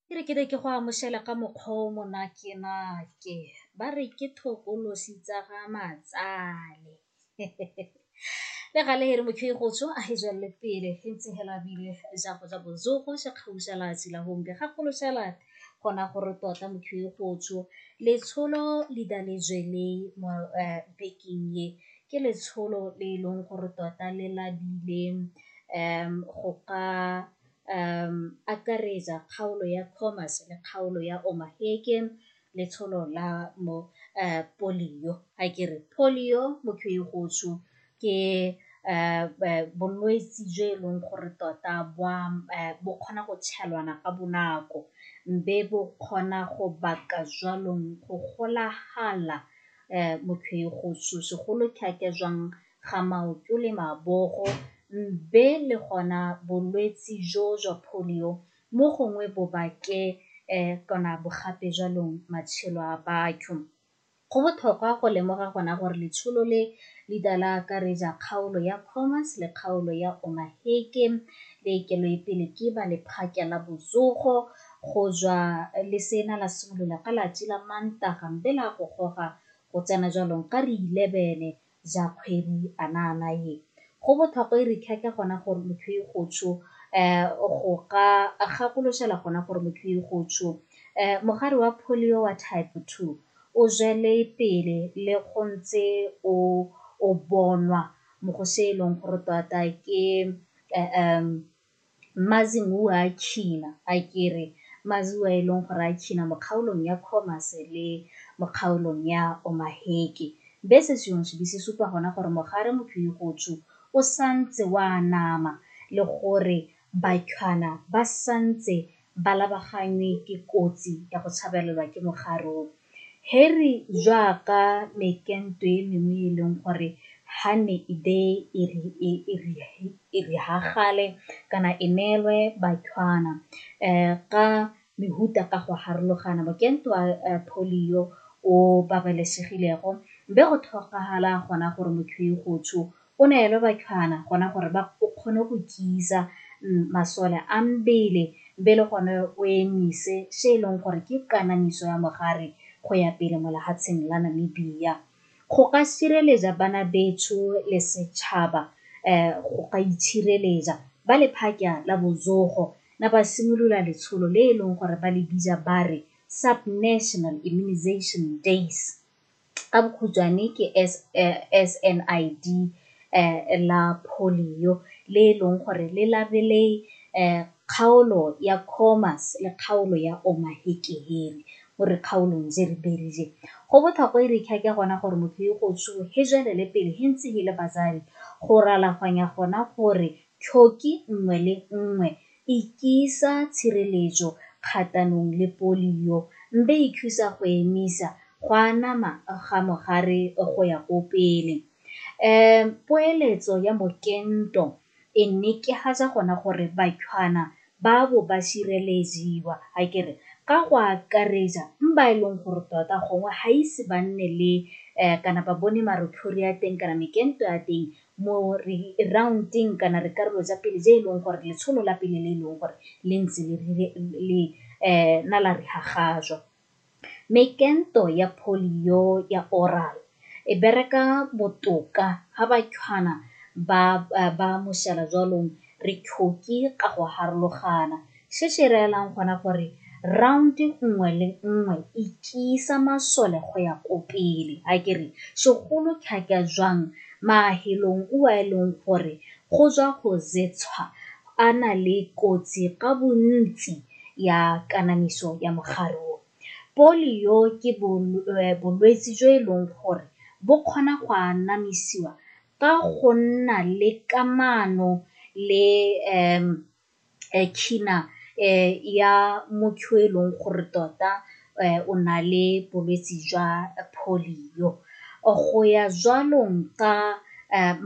Ke re ke ne ke go amoshela ka mokgwa o monakenake, ba re ke thokolosi tsa ga matsale. Le gale he re motho e go tsho a e jwalele pele e ntse hela bile ja go ja bojogo ja kgausha la tsela gombe ga golo shala gona gore tota motho e go tsho letsholo le da le jweleng mo bekeng e ke letsholo le e leng gore tota le labile go ka akaretsa kgaolo ya commerce le kgaolo ya omaheke letsholo la mo polio a ke re polio motho e gotsho ke bolwetse jo e leng gore tota bo kgona go tshelwana ka bonako mme bo kgona go baka jwanong go golagala mokhwegosu segolo thata jwang ga maoto le mabogo mbe le gona bolwetsi jo jwa polio mo gongwe bobake kana bogape jwalong matshelo a batho. Go botlhokwa go lemoga gona gore letsholo le le ka la akaretsa kgaolo ya Khomas le kgaolo ya Omaheke le keloepele ke ba lephata la botsogo. Go jwa lesela la simolola ka lati la Mantaga mbe la go goga go tsena jwalong ka ri 11 ja kgwedi anaana ye. Go bothokwa e ri khekhe gona gore motho e go tsho go ka gakoloshela gona gore motho e go tsho mogare wa polio wa type 2 o jwele pele le go ntse o o bonwa mo go se e leng gore tota ke Mazimuwa a China, a ke re Maziwa a e leng gore a China mo kgaolong ya Khomas le mo kgaolong ya Omaheke. Be se sengwe se be se supa gona gore mogare Mophirigotshu o santse o anama le gore Batlhwana ba santse ba labaganngwe ke kotsi ya go tshabelelwa ke mogare o. Harry jaaka mekento e mengwe e e leng gore ha ne e be e riagale kana e neelwe bathwana ka mehuta ka go harologana mokento wa polio o babalesegilego be go tlhokagala gona gore motho yo go tsho O ne a elwa bathwana gona gore ba o kgone go tiisa masole a mbele mbe le gone o emise se e leng gore ke kanamiso ya mogare go ya pele mo lehatsheng la Namibia. Go ka sireleja bana betsho le setšhaba um go ka itshireleja, ba lephakya la bozogo na ba simolola letsholo le e leng gore ba le bija ba re Sub-National Immunisation Days. ka bokhutshwane ke SNID la polio le e leng gore le labele kgaolo ya Khomas le kgaolo ya Omaheke-Heri mo dikgaolong tse re berile. Go botlhokwa e re kha ke gona gore motho yo go tsholo he jwelele pele he ntse he le batsadi go ralaganya gona gore tlhoki nngwe le nngwe Ikisa tshireletso kgatanong le polio mbe ikhusa go emisa go anama ga mogare go ya ko pele. Um poeletso ya mokento e nekehatsa gona gore bathwana ba bo ba sireleziwa akere ka go akaretsa ba e leng gore tota gongwe ga ise ba nne le um kana ba bone marothodi a teng kana mekento ya teng mo re round-eng kana re karolo tsa pele tse e leng gore letsholo la pele le e leng gore le ntse le na la re hagajwa. Mme kento ya polio ya oral e bereka botoka ha batshwana ba ba mošala jwalong re tlhoke ka go harologana se se reelang gona gore round-e nngwe le nngwe e tiisa masole go ya ko pele a ke re segolo thata jwang mafelong o a e leng gore go tswa go tshwa a na le kotsi ka bontsi ya kanamiso ya mogare o. Polio ke bolwetse jo e leng gore bo kgona go anamisiwa ka go nna le kamano le China ya motho yo e leng gore tota o na le bolwetse jwa polio. Go ya jwalong ka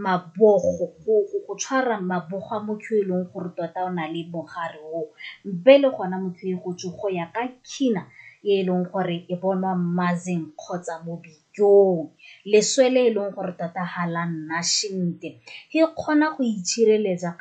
mabogo, go tshwara mabogo a motho yo e leng gore tota o na le mogare o, be le gona motho e go tse go ya ka China e e leng gore e bonwa mmazeng kgotsa mo dijong. Leswe le e leng gore tota ga la nna sentle, e kgona go itshireletsa .